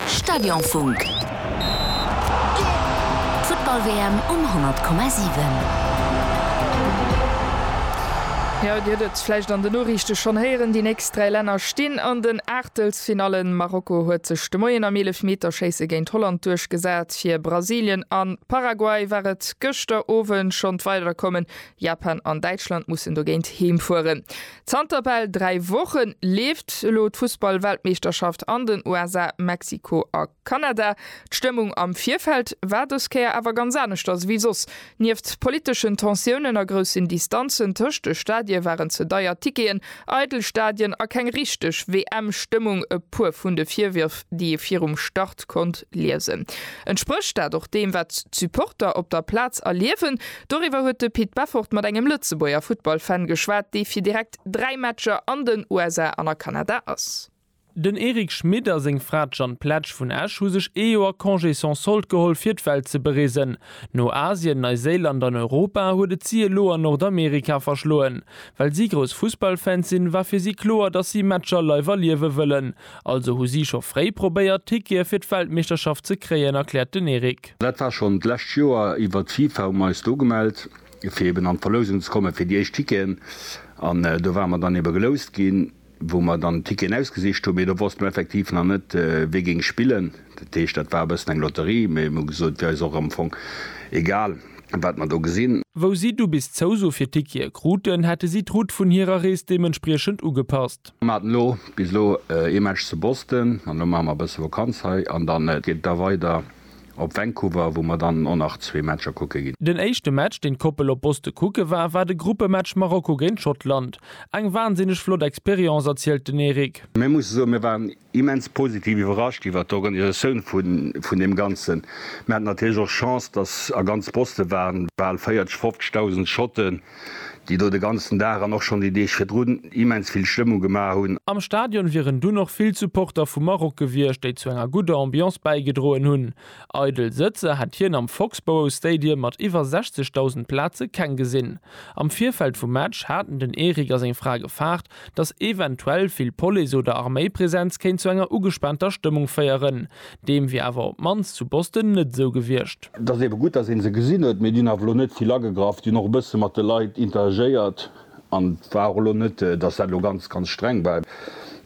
Stadionfunk, d'Futtball-WM um 100,7. Jo, Dir hutt et vläicht an den Noriichte schonn héieren, déi nächst dräi Länner stinn an den Aachtelsfinallen. Marokko huet sech de Moien am Eelefmeterschéisse géint Holland duerchgesat. Fir Brasilien a Paraguay war et gëschter Owend schonn d'Weiderkommen. Japan an Däitschland mussen dogéint heemfueren. Zanter bal 3 Wochen leeft elo d'Fussballweltmeeschterschaft an den USA, Mexiko a Kanada. D'Stëmmung am Virfeld war dës Kéier awer ganz aneschters ewéi soss. Nieft politeschen Tensiounen a groussen Distanzen tëscht de Stadie waren ze deier Ticketen, eidel Stadien a keng richteg WM-Stëmmung e puer vun de Virwërf, déi ee virum Start konnt liesen. Entsprécht dat och deem, wat d'Supporter op der Plaz erliewen? Doriwwer huet de Pit Beffort mat engem Lëtzebuerger Futtballfan geschwat, dee fir direkt 3 Matcher an den USA an a Kanada ass. Den Eric Schmit a seng Fra d'Jeanne Pletsch vun Esch hu sech ee Joer Congé sans solde geholl fir d'Welt ze bereesen. No Asien, Neiséiland an Europa huet et si elo an Nordamerika verschloen. Well si grouss Fussballfans sinn, war fir si kloer, datt si Matcher live erliewe wëllen. Also hu si scho fréi probéiert, Tickete fir d'Weltmeeschterschaft ze kréien, erkläert den Eric. Dat war schonn d'lescht Joer iwwert d'FIFA, hu mer eis do gemellt, fir eben an d'Verlousung ze kommen, fir déi éischt Ticketen. An do ware mer dann ebe geloust ginn, wou mer dann d'Ticketen ausgesicht hunn. Mee do wosste mer effektiv nach net, wie géing spillen. Dat heescht, dat war e bëssen eng Lotterie. Mee mir hu gesot, wier eis och am Fong egal, wat mer do gesinn. Wou si du bis d'Zouso fir d'Tickete kruten, hätte si d'Route vun hirer Rees deementspriechend ugepasst. Mir haten elo bis elo ee Match zu Boston an elo maache mer e bësse Vakanz hei an dann geet et da weider op Vancouver, wou mer dann och nach zwee Matcher kucke ginn. Den éischte Match, deen d'Koppel op Boston kucke war, war de Gruppematch Marokko géint Schottland. Eng wansinneg flott Experience, erzielt den Eric. Mir musse soen, mir waren immens positiv iwwerrascht iwwert d'Organisatioun vun deem Ganzen. Mir haten natierlech och Chance, dass a ganz Boston waren bal 40, 50.000 Schotten, déi do de ganzen Dag an och schonn déi Deeg virdrun immens vill Stëmmung gemaach hunn. Am Stadion wieren dunn och vill Supporter vu Maroc gewiescht, déi zu enger gudder Ambiance bäigedroen hunn. Eidel Sëtzer hätt hien am Foxborough Stadium mat iwwer 60.000 Plaze keng gesinn. Am Virfeld vum Match haten den Eric a seng Fra gefaart, datt eventuell vill Police oder Arméipresenz kéint zu enger ugespaanter Stëmmung féieren. Deem wier awer op d'mannst zu Boston net esou gewiescht. Et ass eebe gutt, datt ee se gesinn huet, mee déi hunn awer elo net vill agegraff. Déi hunn och e bësse mat de Leit interagéiert an et war och elo net, datt dat elo ganz, ganz streng war.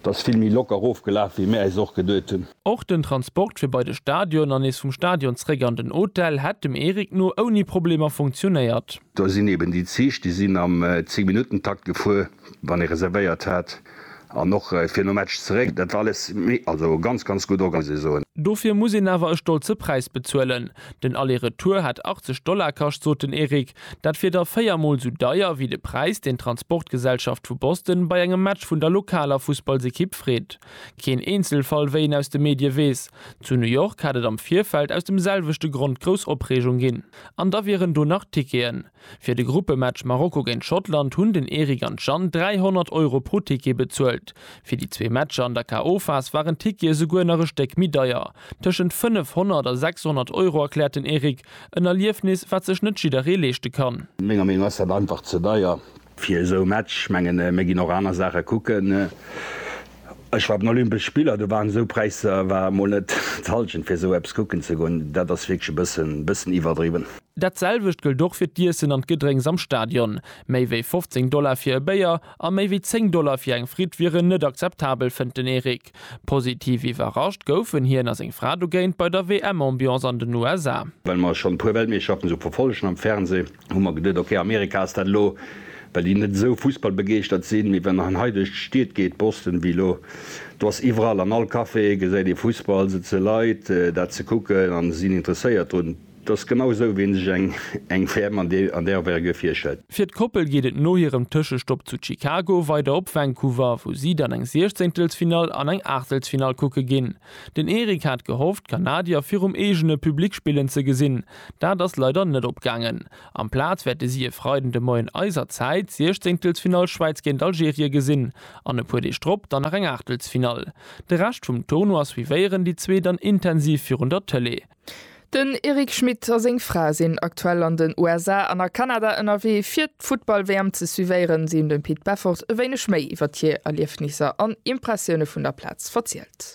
Et ass vill méi locker ofgelaf, wéi mir äis och geduet hunn. Och den Transport fir bei de Stadion an nees vum Stadion zréck an den Hotel hätt dem Eric no ouni Problemer funktionéiert. Do sinn eben déi Zich, déi sinn am Zéngminuttentakt gefuer, wann ee reservéiert hat, an och fir no Match zeréck. Dat war alles méi, also ganz, ganz gutt orga, muss ee soen. Dofir muss een awer e stolze Präis bezuelen. Den Aller-Retour hätt 80 Dollar kascht, sot den Eric. Dat wier da véier Mol sou deier wéi de Präis, deen d'Transportgesellschaft vu Boston bei engem Match vun der lokaler Fussballsekipp freet. Keen Eenzelfall, wéi een aus de Medie weess. Zu New York hätt et am Virfeld aus dem selwechte Grond grouss Opreegung ginn. An da wieren do nach Ticketen. Fir de Gruppematch Marokko géint Schottland hunn den Eric an d'Jeanne 300 Euro pro Ticket bezuelt. Fir déi zwee Matcher an der KO-Phas waren d'Tickete esouguer nach e Stéck méi deier, tëschent 500 a 600 Euro, erkläert den Eric. En Erliefnis, wat sech net jidderee leeschte kann. Menger Meenung ass dat einfach ze deier. Fir esou e Match, mengen mir ginn och aner Saache kucken. Ech war op den Olympesch Spiller, do waren esou Präisser, war mol net d'Hallschent fir esou eppes kucken ze goen. Dat ass wierklech e bëssen bëssen iwwerdriwwen. Dat selwecht gëllt och fir d'Iessen an d'Gedrénks am Stadion. Méi wéi 15 Dollar fir e Béier a méi wéi 10 Dollar fir eng Fritt wieren net akzeptabel, fënnt den Eric. Positiv iwwerrascht goufen hien a seng Fra dogéint bei der WM-Ambiance an den USA. Well mer schonn e puer Weltmeeschterschaften esou verfollegen am Fernsee, hu mer geduet, ok, Amerika ass dat elo, well déi net esou fussballbegeeschtert sinn, mee wann en hei duerch d'Stied geet, Boston, wéi elo, do ass iwwerall an all Café gesäit ee Fussball, sëtze Leit dat ze kucken a sinn interesséiert drun. Dat ass genau esou, wéi een sech eng WM an där Envergure virstellt. Fir d'Koppel geet et no hirem Tëschestopp zu Chicago weider op Vancouver, wou si dann eng Siechzéngtelsfinall an eng Aachtelsfinall kucke ginn. Den Eric hat gehofft, d'Kanadier virum eegene Public spillen ze gesinn. Dat ass leider net opgaangen. Amplaz wäerte si e Freiden de Moien eiser Zäit d'Siechzeengtelsfinall Schwäiz géint Algerie gesinn an e puer Deeg drop dann nach eng Aachtelsfinall. De Rescht vum Tournoi suivéieren déi zwee dann intensiv virun der Tëlee. Den Eric Schmit a seng Fra sinn aktuell an den USA an a Kanada ënnerwee fir d'Futtball-WM ze suivéieren. Si hunn dem Pit Beffort e wéineg méi iwwert hir Erliefnisser an Impressioune vun der Plaz verzielt.